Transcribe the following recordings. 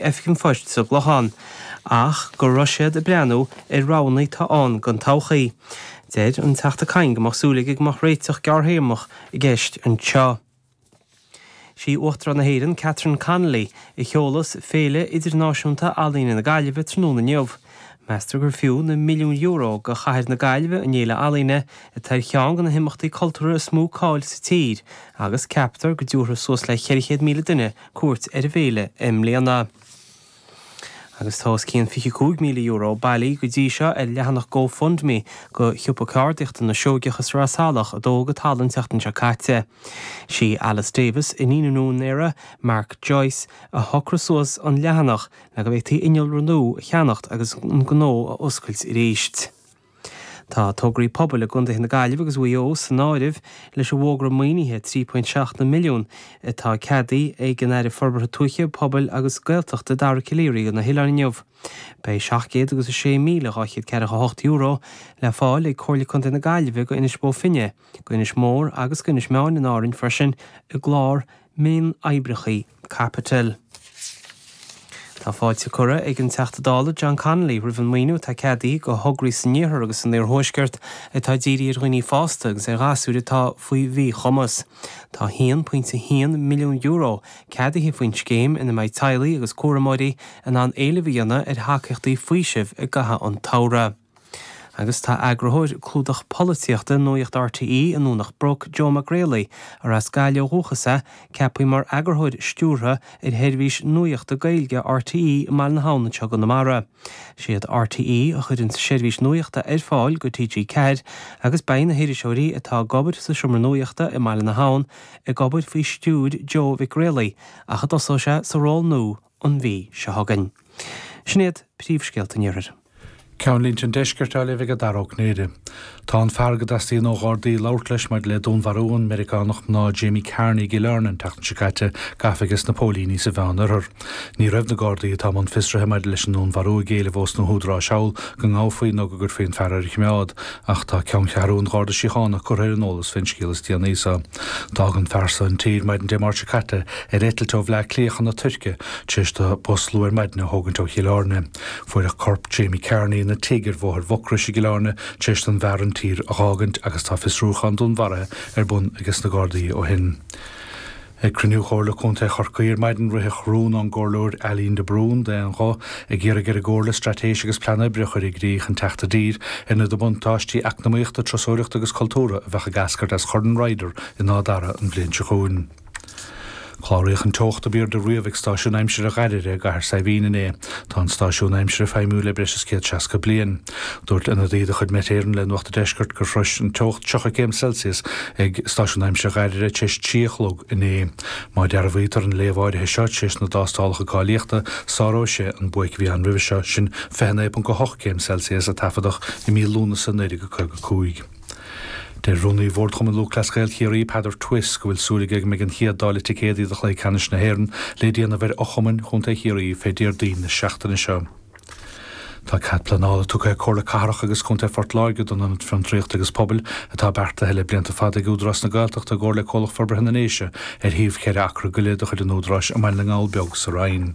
oifig an phoist sa Chlochán, ach go raibh siad ag breathnú ar roghanna atá ann don todhchaí. Deir an Teachta Kyne go mbeadh súil aige go mbeadh réiteach gearrthéarmach i gceist anseo. Sí Uachtarán na hÉireann, Catherine Connolly, a sheolas Féile Idirnáisiúnta Ealaíne na Gaillimhe tráthnóna inniu. Meastar gur fiú na milliúin euro do chathair na Gaillimhe an fhéile ealaíne, atá ar cheann de na himeachtaí cultúrtha is mó cáil sa tír, agus ceaptar go dtabharfadh suas le 400,000 duine cuairt ar an bhféile i mbliana. Agus tá os cionn €25,000 bailí go dtí seo ar leathanach GoFundMe go Siopa Ceardaíochta na Seoigeach sa Sraith Salach a dódh go talamh an tseachtain seo caite. Is í Alice Davis, iníon an úinéara, Mark Joyce, a shocraigh suas an leathanach le go bhféadfaí innealra nua a cheannach agus an gnó a oscailt arís. Tá tograí pobail i gcontaetha na Gaillimhe agus Mhaigh Eo san áireamh leis an bhfógra maoinithe €3.7 milliún atá ceadaí ag an Aire Forbartha Tuaithe, Pobail agus Gaeltachta, Dara Calleary go na hoileáin inniu. Beidh €706,248 le fáil ag Comhairle Contae na Gaillimhe go Inis Bó Finne, go Inis Mór agus go Inis Meáin in Árainn freisin i gclár mion-oibreachaí. Caipitil. Tá fáilte curtha ag an Teachta Dála John Connolly roimh an maoiniú atá ceadaithe do thograí san Iarthar agus san Iarthuaisceart atá ag díriú ar dhaoine fásta agus ar ghasúir atá faoi mhíchumas. Tá €1.1 milliún ceadaithe faoin scéim ina mbeidh teaghlaigh agus cúramóirí in ann éileamh a dhéanamh ar thacaíochtaí faoisimh i gcaitheamh an tsamhraidh. Agus tá eagarthóir clúdach polaitíochta Nuaíocht rte i nDomhnach Broc, Joe Mag Raollaigh, arb as Gaillimh ó dhúchas é, ceapaí mar eagarthóir stiúrtha ar sheirbhís nuaíochta Gaeilge rte i mBaile na hAbhann anseo i gConamara. Siad rte a chuireann seirbhís nuaíochta ar fáil go TG4 agus beidh na hiriseoirí atá ag obair sa tSeomra Nuaíochta i mBaile na hAbhann ag obair faoi stiúir Joe Mhig Raollaigh ach a dtosóidh sé sa ról nua an mhí seo chugainn. Sin iad príomhscéalta an Iarthair. Ceannlínte an Deisceart á léamh ag Dara Ó Cinnéide. Tá an fear go dteastaíonn ó Ghardaí labhairt leis maidir le dúnmharú an Mheiriceánach mná Jamie Carney i gCill Airne an tseachtain seo caite gafa aige sna póilíní sa Mheán-Oirthear. Ní raibh na Gardaí atá i mbun fiosraithe maidir leis an ndúnmharú ag éileamh ós na húdaráis thall go ngabhfaí nó go gcuirfí an fear fé choimeád ach tá Ceanncheathrú an Gharda Síochána curtha ar an eolas faoin scéal is déanaí sa D'fhág an fear seo an tír maidin Dé Máirt seo caite ar eitilt ó Bhleá Cliath chun na Tuirce, tar éis dó bus luath ar maidin a thógaint ó Chill Áirne. Fuaireadh corp Jamie Carney ina tigh ar Bhóthar Mhucrois i gCill Áirne tar éis don bhfear an tír a dh'fhágaint agus tá fiosrúchán dúnmharaithe ar bun ages na Gardaí ó shin. Ag cruinniú Chomhairle Contae Chorcaí ar maidin ritheadh rún ón gComhairleoir Eileen de Brún d'aon ghuth, Ag iarraidh ar an gComhairle straitéis agus plean oibre a chur i gcrích chun teacht i dtír ar na buntáistí eacnamaíochta, turasóireachta agus cultúrtha a bheidh ag eascairt as Chorn Ryder in Áth Dara an bhliain seo chugainn. Cláraíodh an teocht ab airde riamh ag stáisiún aimsire Dhairbhre i gCathair Saidhbhín inné. Tá an stáisiún aimsire feidhmiúil le breis is céad seasca bliain. Dúirt ionadaí de chuid Met Éireann le Nuacht an Deiscirt gur shrois an teocht 30 céim Celsius ag stáisiún aimsire Dhairbhre tar éis trí a chlog inné. Má dhearbhaítear an léamh áirithe seo, tar éis na dtástálacha cáilíochta, sáróidh sé an buaic a bhí ann roimhe seo, sin 29.8 céim Celsius a taifeadadh i mí Lúnasa 1955. Deir Rúnaí Bhord Chumann Lúthchleas Gael Chiarraí, Peadar Twiss, go bhfuil súil aige go mbeidh an chéad dáileadh ticéadaí do chluiche ceannais na hÉireann le déanamh ar fhochumainn Chontae Chiarraí fé Déardaoin na seachtaine seo. Tá cead pleanála tugtha ag Comhairle Cathrach agus Contae Phort Láirge don Ionad Fiontraíochta agus Pobail atá beartaithe le blianta fada ag Údarás na Gaeltachta i gcomhar le Comhlacht Forbartha na nDéise ar shuíomh cheithre acra go leith de chuid an Údaráis i mBaile na nGall Beag sa Rinn.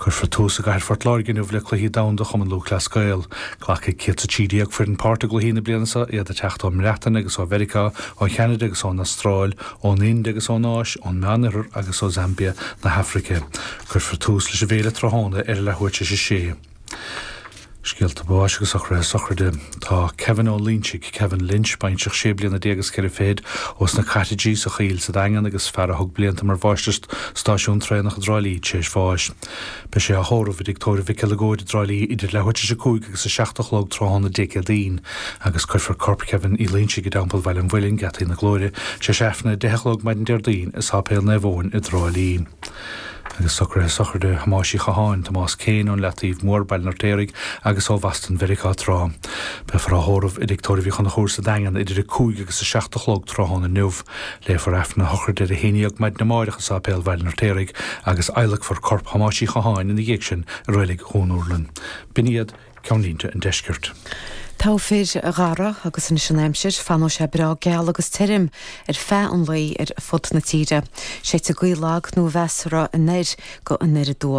Cuirfear tús i gcathair Phort Láirge inniu le Cluichí Domhanda Chumann Lúthchleas Gael. Glacfaidh 113 foireann páirt i gcluichí na bliana seo, iad ag teacht ón mBreatain agus ó Mheiriceá, ó Cheanada agus ón Astráil, ón Ind agus ón Áis, ón Meánoirthear agus ó Zambia na hAfraice. Cuirfear tús leis an bhféile tráthnóna ar a leath uair tar éis a sé. Scéalta báis agus socruithe sochraide. Tá Kevin Ó Loinsigh, Kevin Lynch, baintreach sé bliana déag is ceithre fichid, ós na Cottages sa Choill sa Daingean agus fear a thug blianta mar mháistir stáisiún traenach i dTrá Lí tar éis bháis. Beidh sé á thórramh i dTigh Tórraimh Mhic Eileagóid i dTrá Lí idir leath uair tar éis a cúig agus a seacht a chlog tráthnóna Dé Céadaoin agus cuirfear corp Kevin Uí Loinsigh i dTeampall Bhaile an Mhuilinn, Geataí na Glóire, tar éis Aifreann a deich a chlog maidin Déardaoin i Sáipéal Naomh Eoin i dTrá Lí. Agus socruithe sochraide Thomáis Uí Chatháin, Tomás Kane, ón Leataoibh Mór, Baile an Fheirtéaraigh agus ó Bhoston Mheiriceá tráth, beifear á thórramh i dTigh Tórraimh Uí Chonchúir sa Daingean idir a 5 agus a 7 a chlog tráthnóna inniu. Léifear Aifreann a shochraide ar a haon dhéag maidin amáireach i Sáipéal Bhaile an Fheirtéaraigh agus adhlacfar corp Thomáis Uí Chatháin ina dhiaidh sin i Reilig Dhún Urlann. B'in iad. ceannlínte an Deiscirt. Togha fir, a Dhara, agus anois an aimsir, fanfaidh sé breá geal agus tirim ar feadh an lae ar fud na tíre. Séidfidh gaoth lag nó mheasartha anoir go anoir aduaidh.